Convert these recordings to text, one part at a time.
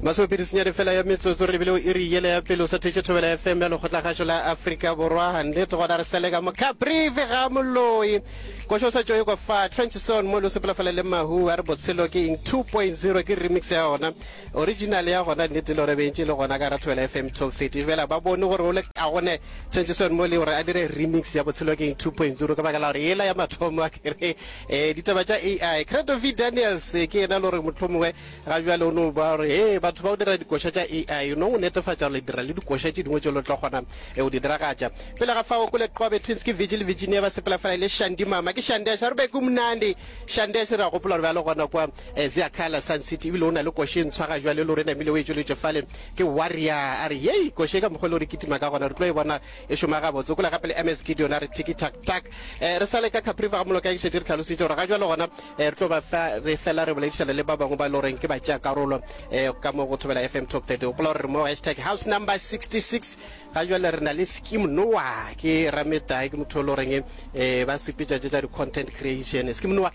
masomepedi senyane fela ya metsotso re lebile o iri yele ya pele o sa thetše thobela fm ya lekgotlagašo la afrika borwa gannete gona re selega mocaprive ga moloi košo o sa tšoe kwa fa tranchison mo le sepolafela le mahu a re botshelo ke eng 2.0 ke remix ya gona original ya gona nnete le gore bentše le gona ka ra thobela fm top 30 fela ba bone gore o le ka gone tranchison mo le gore a dire remix ya botshelo ke eng 2.0 ka baka la gore yela ya mathomo a kere Eh, ditaba tša ai credo v daniels eh, ke yena le gore mohlomongwe ga bjale o no ba gore e batho ba o dira dikoša tša ai o no o netefatša gore le dira le dikoša tše dingwe tše lo tla kgona e o di diragatša pele ga fao kole qobe twins ke vigil virginia ba sepela fela e le shandi mama ke shandi asha rube ke mnandi shandi asha re a gopola gore ba le gona kwa eh, zia kala sun city ebile o na le koše e ntshwa ga jwale le gore namile o e tšweletše fale ke warrior a re yei koše ka mokgwa le gore kitima ka gona re tlo e bona e šoma gabotse kula gape le ms gideon a re tiki tak tak um re sa le ka capriva ga moloka ke šetse re tlhalositse gore ga jalo gona um re tlo ba fa re fela re boledišana le ba bangwe ba e le goreng ke ba tšea karolo um ka mo go thobela fm top 30 gopola gore re mo hashtag house number 66 ga jale re na le skim noa ke rametlae ke motho o le goreng um ba sepetša tše tša di-content creation skim noa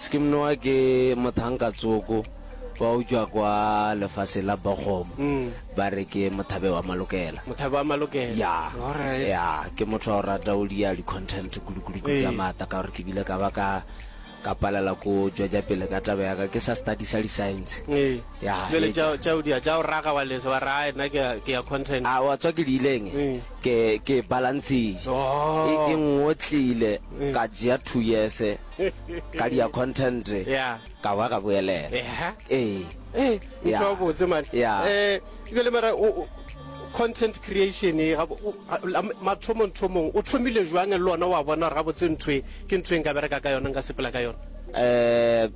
Skimnoa ke mothankatsoko wa utšwa kwa lefaseng la Bochum. Ba re ke mothabe wa malokela. Mothabe wa malokela. Ya. Alright. Ya, ke motho wa go rata go dia di-content kulukuluku ka Ee. maata ka gore ke bile ka ba ka ka palela ko tšwetša pele ka taba ya ka ke sa studisa di-science. Ee. Ya, Bjale e- tša tša o dia tša o raga wa lesa wa re "Ai, nna ke ya- ke ya content. a wa tswa ke di ileng Mm. ke ke balantshitše Oh. e e ngotlile ka jea two years ka dia content yeah. ka wa ga boelela yeah. ee ee yeah. o botse man yeah. eh jale mara content creation e mathomong thomong o thomile jwang le ona wa bona ga botse ntwe ke ntwe nka bereka ka yona nka sepela ka yona eh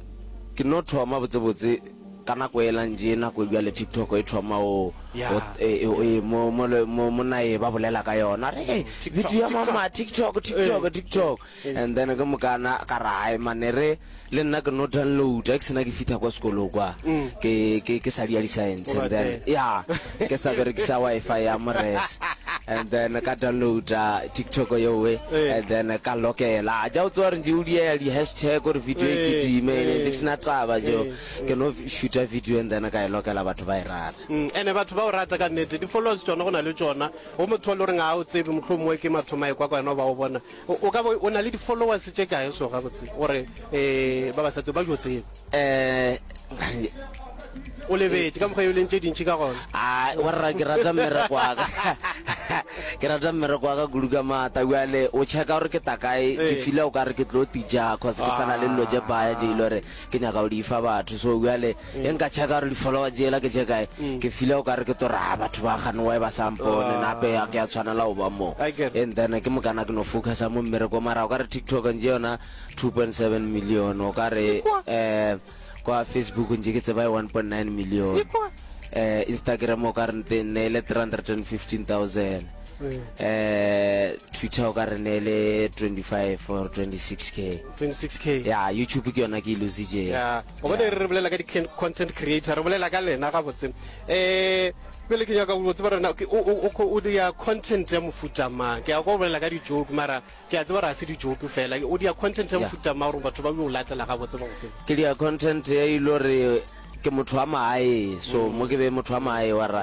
ke no thoma botse botse ka nako e lang je nako jwa le tiktok e thoma o e, e, e, mo mo mo nae ba bolela ka yona re video ya mama tiktok tiktok tiktok And then ke mokana ka ra hai mane re le nna ke no download ke sena ke fitha kwa sekolo kwa ke ke ke sa dia di science and then ya ke sa berekisa wifi ya mores and then ka download tiktok yo we and then ka lokela ja o tswa re ndi u dia di hashtag or video e ke di me ne ke sena taba jo ke no shoot a video and then ka e lokela batho ba e rata ene batho ba o rata ka nete di followers tsona gona le tsona o motho le re nga o tsebe mohlomongwe ke mathomae kwa kwa yona ba o bona O, o ka bo o na le di-followers tše kae so gabotse gore um ba ba sa tse ba jo tseba? Um, o lebetše ka mokgwa yo leng tše dintši ka gona. Ah, warra ke rata mmereko wa ka. ke rata mmereko wa ka kudu ka maata. Bjale o checka gore ke ta kae, ke Ee. fila o ka re ke tlo tija cause ke sa na le dilo tše baya je e le gore ke nyaka go di fa batho. So bjale Ge nka checka gore di-follower jela ke tše kae, ke file o ka re ke tlo re, Ha, batho ba gane why ba sa mpone, nape ga ke a tshwanela go ba mo. I get. And then ke mokana ke no focusa mo mmerekong. Mara o ka re TikTok nje yona two point seven million, o ka re Ikwa. um kwa Facebook nje ke tseba e one point nine million, Ikwa. um Instagram o ka re nte ne e le three hundred and fifteen thousand, um Twitter o ka re ne e le twenty five or twenty six k. 26k. Ya, YouTube ke yona ke e lositšeng. Yeah. o bone re bolela ka di-content creator re bolela ka lena gabotse um pele ke nyaka go tseba rena o dia content ya mofuta mang ke ya go bolela ka dijoke mara ke a tseba re a se dijoke fela o dia content ya mofuta mang gore batho ba yo latela gabotse gabotse ke dia content ya ilo re ke motho wa maae so mm. mo ke be motho wa maae wa ra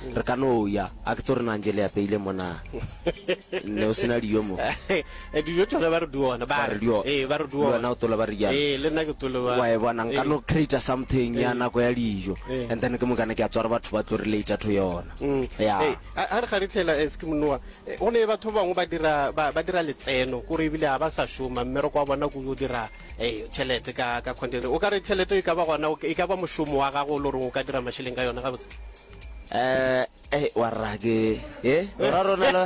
Re ka no ya, a ke tso re nang je le apeile mo na. Ne o sena diyo mo. Eh, diyo tšona ba re di ona, ba re diyo. Eh, ba re di ona. Wena o tola ba re diyo. Eh, le nna ke tole ba. Wa e bona, nka no create something ya nako ya diyo. And then ke mokana ke a tswara batho ba tlo re leitša tho yona. Mm. Ya. Eh, a re ga re tlela eh, ske monoa. Eh, o ne batho bangwe ba dira ba ba dira letseno, kore ebile ha ba sa shoma, mme re kwa bona go yo dira eh chelete ka ka content. O ka re chelete e ka ba gona e ka ba moshomo wa gago o lo reng o ka dira masheleng ka yona gabotse. Eh, eh, wa rra ke e ra rona lo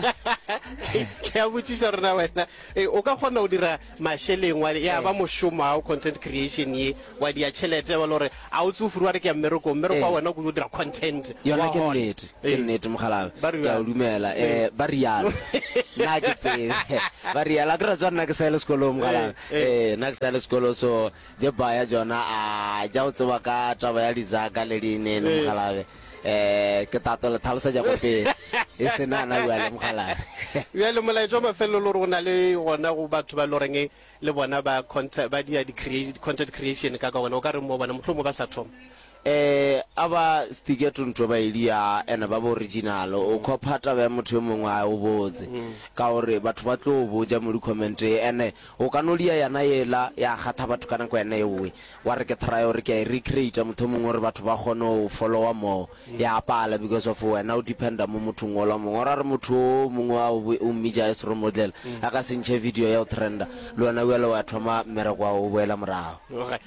ke a botsiša rona wena eh, o ka kgona go dira mašeleng wa ya ba eh. mošomo ao content creation ye wa dia tšhelete ba le gore a o tse o furu wa re ke ya mmereko mmereko wa eh. wena o kudu dira content yona ke nnete ke nnete mogalabe ke a o dumela um ba rialo nna ke tsebe ba rialo a ke ra tswa nna ke sa ele sekolong mogalabe um nna ke sa ele sekolo so Tše baya tšona a ja o tseba ka taba ya dizaka le dine le mokgalabe eh ke tato le tlhalosetša go pele e se na na bua le mokgalabe ya le molaetša ba fello le rona le gona go batho ba loreng le bona ba content ba dia di create content creation ka ka gona o ka re mo bona mohlomong ba sa thoma E a ba Sticker Tuntwe ba Elia ena ba ba original. O kho phata bea motho yo mongwe a o botse. Ka gore batho ba tlo o boja mo di comment ene o ka no lia yana yela ya kgatha batho ka nako yana eoe. Wa re ke try gore ke a e recreate mothomong gore batho ba kgone o follower more. Ya pala because of wena o depender mo mothong ola mongwe. Or a re motho o mongwe a o mmitša as role model a ka se ntšhe video ya o trender le wena eale wa thoma mmereko wa o boela morago.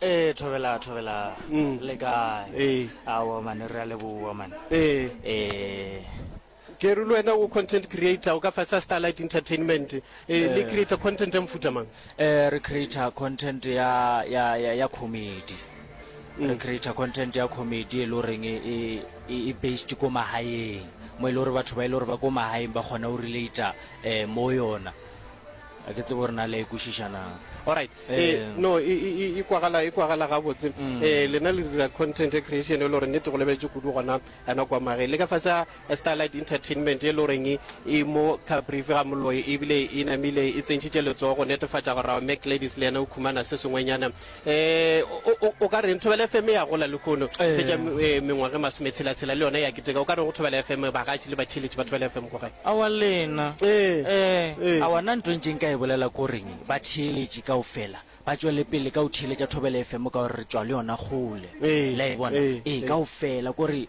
Ee, thobela, thobela. Mm. Le kae? Ee. Aowa mane, re a leboa mane. Ee. Ee. ke re le wena o content creator o ka fasa starlight entertainment eh, le creator content ya mofuta mang Eh, re creator content ya ya ya, ya comedy. Re creator content ya comedy e le goreng e e- e e based ko magaeng. Mo e le gore batho ba e le gore ba ko magaeng ba kgona go relate eh mo yona. Ga ke tsebe gore na le a e kwešiša na. Alright. Eh, eh, no e e e kwagala e kwagala ga botse. Mm. Eh lena le dira content e creation e lore nete go lebetse kudu gona ana kwa mage. Le ka fasa eh, Starlight Entertainment e lore ngi e mo ka brief ga moloi e bile e namile e tsentšitše letsogo go netefatša gore our Mac ladies le yena o khumana se sengwenyana. Eh, o, o, o ka reng thobela fm ya gola lehono e fetša eh, mengwage masome tshelatshela le yona ya keteka o ka reng go thobela fm bagatši le batheletši ba thobela fm ko gae awa lena Eh, eh eh. awa nna nto ntšeng ka e bolela ko reng batheeletši kao fela ba tšwele pele ka o theeletša thobele fm ka gore re tšwa le yona kgole Eh, la e bona eh, ee eh. kao fela kore